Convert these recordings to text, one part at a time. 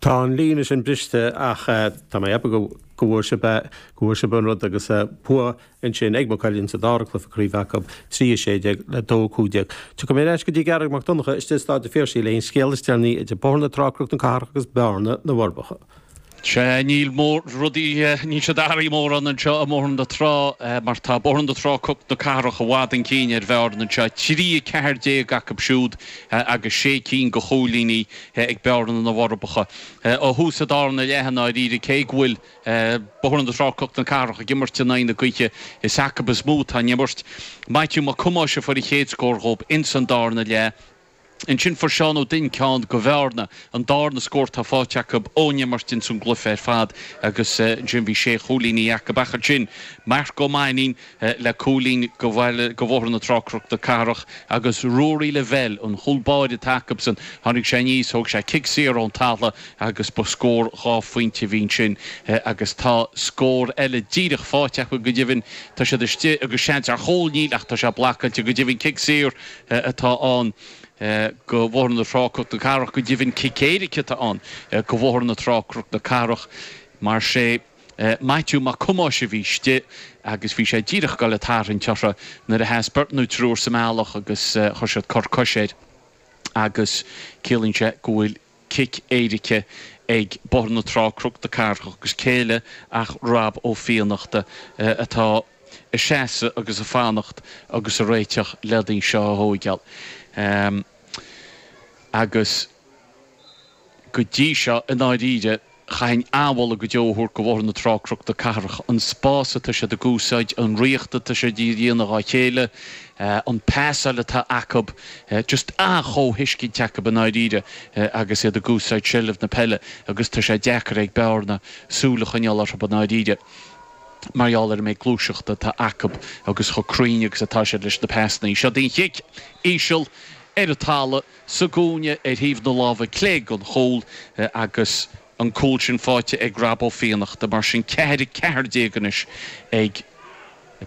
Tá an líne sin briste ach tá mé ag ceapadh go bhfuair sibh é, go bhfuair sibh an rud agus bua ansin ag Maigh Cuilinn sa dara cluiche craoibhe acu, 3-16 le 2-15. Tiocfaidh mé ar ais go dtí Garry Mac Donncha istigh i Stáid a' Phiarsaigh le haghaidh an scéal is deireanaí idir Bóthar na Trá-Cnoc na Cathrach agus Bearna na bhForbacha. Sea, níl rudaí, níl siad ag athrú mórán anseo i mBóthar na Trá mar tá Bóthar na Trá-Cnoc na Cathrach i bhfad chun cinn ar Bhearna anseo, 3-14 acu siúd agus sé cinn go chúilíní. ag Bearna na bhForbacha. Ó thús an darna leath i ndáiríre, cé go bhfuil Bóthar na Trá-Cnoc na Cathrach ag imirt in aghaidh na gaoithe, is acu is mó atá an imirt. Maitiú Mac Thomáis a fuair a chéad scór dhób ins an darna leath. Ansin fuair Seán Ó Duinn ceann go Bhearna an darna scór atá fáighte acu ón imirt ins an gcluife ar fad agus ansin bhí sé chúilíní acu. Ach ansin Marc Ó Mainnín. le cúilín go Bhaile go Bhóthar na Trá-Cnoc na Cathrach agus Ruairí Lavelle an cúl báire atá acusan, tháinig sé aníos, thóg sé cic saor ón talamh agus ba scór dhá phointe a bhí ansin. Agus tá scór eile díreach fáite acu go deimhin, tá siad istigh agus seans ar chúl, níl ach tá sé blacáilte go deimhin, cic saor atá ann go Bhóthar na Trá-Cnoc na Cathrach, go deimhin cic éirice atá ann go Bhóthar na Trá-Cnoc na Cathrach, mar sin. Maitiú Mac Thomáis a bhí istigh agus bhí sé díreach ag dul ag tarraingt uirthi nuair a sheas beirt nó triúr sa mbealach agus chuir siad cor coise air agus ciallaíonn sé go bhfuil cic éirice ag Bóthar na Trá-Cnoc na Cathrach agus cé eile ach Rob Ó Fiannachta atá ag seasamh agus ag fanacht agus ag réiteach len í seo a thóigeáil agus. Go dtí seo, i ndáiríre, chaithfinn an-mholadh go deo a thabhairt do Bhóthar na Trá-Cnoc-na Cathrach, an spás atá siad ag úsáid, an ritheacht atá siad a dhéanamh dhá chéile, an pasáil atá acu, just an-chomhthuiscint acu i ndáiríre agus iad ag úsáid seilbh na peile agus tá sé deacair ag Bearna súil a choinneáil orthu i ndáiríre mar gheall ar an méid gluaiseachta atá acu agus chomh cruinn agus atá siad leis na pasanna. Seod í an chic, íseal, ar an talamh. sa gcúinne ar thaobh na láimhe clé den chúl agus an cúl sin fáighte ag Rob Ó Fiannachta. Mar sin, ceathair, a ceathair déag anois ag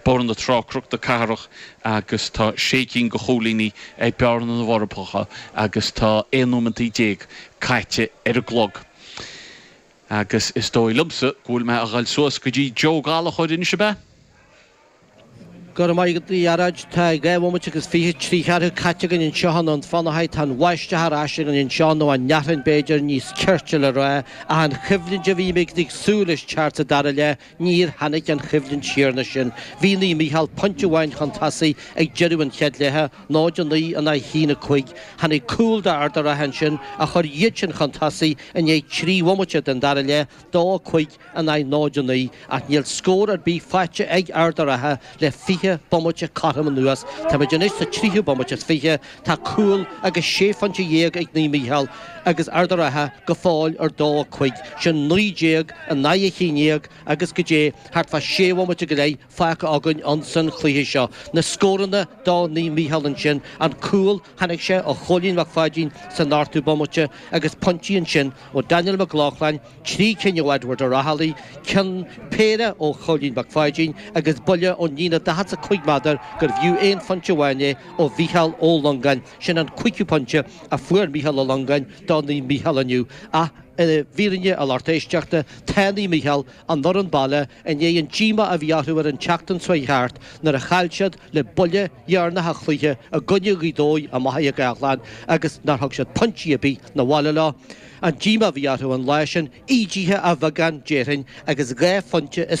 Bóthar na Trá-Cnoc na Cathrach agus tá sé cinn de chúilíní ag Bearna na bhForbacha agus tá aon nóimeantaí déag caite ar an gclog agus is dóigh liomsa go bhfuil mé a ghoil suas go dtí Joe Gallachóir anois, ab ea? Go raibh maith agat, a Ghearóid. Tá dhá bhomaite agus fiche trí cheathrú caite againn anseo i nDún Fionnachaidh. Tá an bháisteach ar ais againn anseo, nó an fhearthainn, b'fhéidir, níos cirte le rá, ach an choimhlint a bhí muid ag súil leis teacht sa dara leath, níor tháinig an choimhlint chéanna sin. Bhí Naomh Mícheál pointe amháin chun tosaigh ag deireadh an chéad leatha, 0-9 in aghaidh 1-5. Tháinig cúl d'Ard a' Rátha ansin a chuir iad sin chun tosaigh i ndiaidh trí bhomaite den dara leath, 2-5. in aghaidh 0 9 ach níl scór ar bith faighte ag Ard a' Rátha le 20 bomaite cothrom anuas. Táimid anois sa tríú bomaite is fiche. Tá cúl agus sé phointe dhéag ag Naomh Mícheál agus Ard a' Rátha go fóill ar dó a cúig, sin naoi déag in aghaidh a haon dhéag agus goidé thart fá sé bhomaite go leith fágtha againn ins an chluiche seo. Na scóranna do Naomh Mícheál ansin, an cúl, tháinig sé ó Chóilín Mac Pháidín san ochtú bomaite agus pointí ansin ó Daniel Mac Lochlainn, trí cinn ó Edward Ó Raghallaigh, ceann péire ó Chóilín Mac Pháidín agus buille ón líne 45 méadar gurbh fhiú aon phointe amháin é ó Mhicheál Ó Longáin, sin an cúigiú pointe a fuair Micheál Ó Longáin do Naomh Mícheál inniu, ach i bhfírinne a lucht éisteachta, tá Naomh Mícheál an fhoireann baile i ndiaidh an díomá a bhí orthu ar an tseachtain seo thart nuair a chaill siad le buille deireanach an chluiche i gcoinne Ghaoth Dobhair i Machaire Gathlán agus nár thug siad pointí ar bith na bhaile leo. An díomá a bhí orthu an lá sin, ídithe a bheagán, déarfainn, agus dhá phointe is